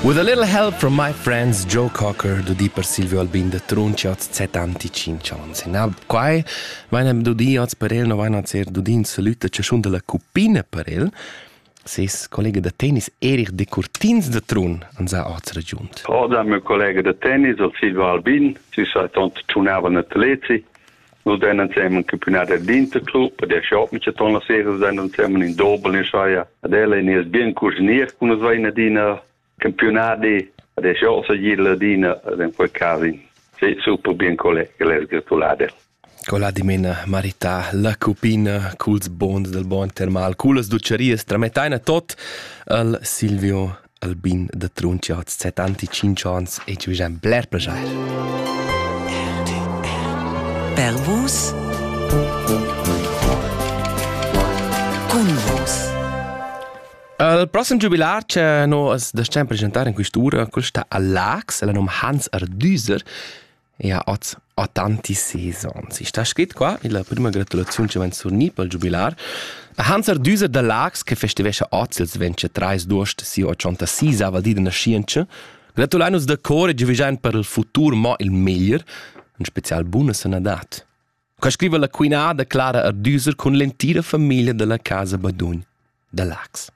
With a little help from my friends Joe Cocker do di per Silvio Albin de Trunciots settanticinc onns. Na, quai vain dudi oz per el, no vain ser dudi in salüta chaschun della cupina per el. ses collega da tennis Erich de Curtins de Trun an sa oz ragiunt. Oder meu collega de tennis, Silvio Albin, si sai tont tunava atleti, nus den ensemen campiunat d'interclub per der shop mit ton la serie sein und semen in dobel in scheier ad ella in es bien cuginier kun es vai in adina campionati ad der shop sa gil adina den quel casin sei super bien collega les gratulate Cola dimena marita la cupina culs bons del bon termal culas ducerias tramettaina tot al Silvio Albin da Trunchia ha settanti tschinch ans e giu jan bler plaschair. Per vus Cun vus Il prossimo giubilar che noi as desciam presentar in quest'ura, quel sta a Lax, el num Hans Ardüser Ia hoz ho tantis sezons. I's sta scrit qua illa prüma gratulaziun chi vain surgni pel giubilar. A Hanser Düser da Laax che festivescha hoz ils 23 d'uost sia 86ava di da naschientscha, gratulain nus da cor e giuvischain per il futur mo il meglier, in special buna sanadad. Qua scriva la quinada Clara Ardüser cun l'entira famiglia da la Casa Badugn da Laax.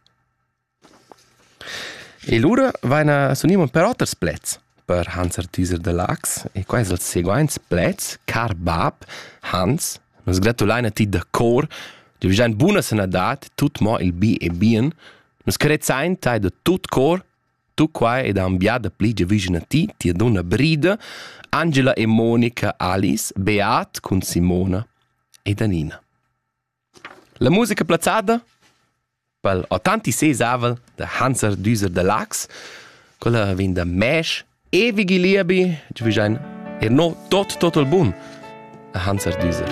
E lura vaina s'uniman per oters plets per Hans Artüser da Laax e quai es els seguaints plets: Car bap, Hans, nus gratulain a ti da cor, tü vajain buna sanadad, tut mo il bi e bien, nus carezzain tai da tut cor, tu quai ed ambià da pli giavüschan a ti, tia dunna Brida, Angela e Monica Alice, Beat cun Simona ed Anina. La musica plazzada pel autenti sesavel da Hanser Düser da Laax, quella vegn da Mäsch e Vigi Liebi, chi vain er no tot total bun a Hanser Düser.